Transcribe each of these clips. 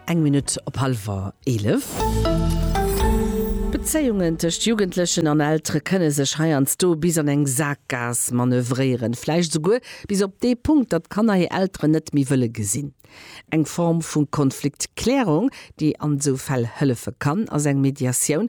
Eng Minutt op hallwer eelef. D'Bezéiungen tëscht Jugendlechen an Eltere kënne sech heiansdo bis an eng Sakgaass manövréieren, vläicht esouguer bis op dee Punkt, datt d'Kanner hir Elteren net méi wëlle gesinn. Eng Form vu Konfliktklärung, déi an esou Fäll hëllefe kann, ass eng Mediatioun,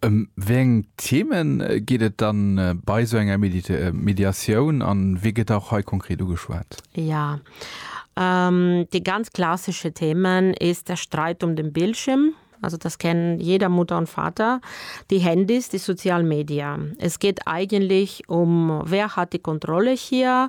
Ëm wéi eng Themen geet et dann bei sou enger Mediatioun an wee gëtt och hei konkret ugeschwat? Ja, déi ganz klassesche Themen is der Streit um den Bildschirm, also das kennt jeder Mutter und Vater, déi Handys, déi sozial Media. Es geet eigentlech um wer hat die Kontrolle hier?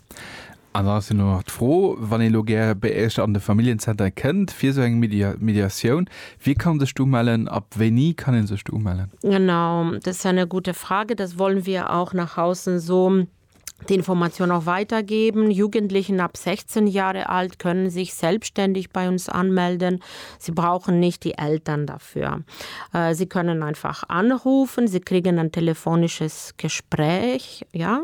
An dann ass jo nach d'Fro, wann ee lo gär bei Iech an de Familljenzenter kënnt fir esou eng Mediatioun, wie kann sech do umellen? Ab wéini kann ee sech do umellen? Genau, das ist eine gute Frage. Das wollen wir auch nach außen so die Information auch weitergeben. Jugendlichen ab 16 Jahre alt können sich selbstständig bei uns anmelden. Sie brauchen nicht die Eltern dafür. Äh, sie können einfach anrufen, sie kriegen ein telefonisches Gespräch, ja,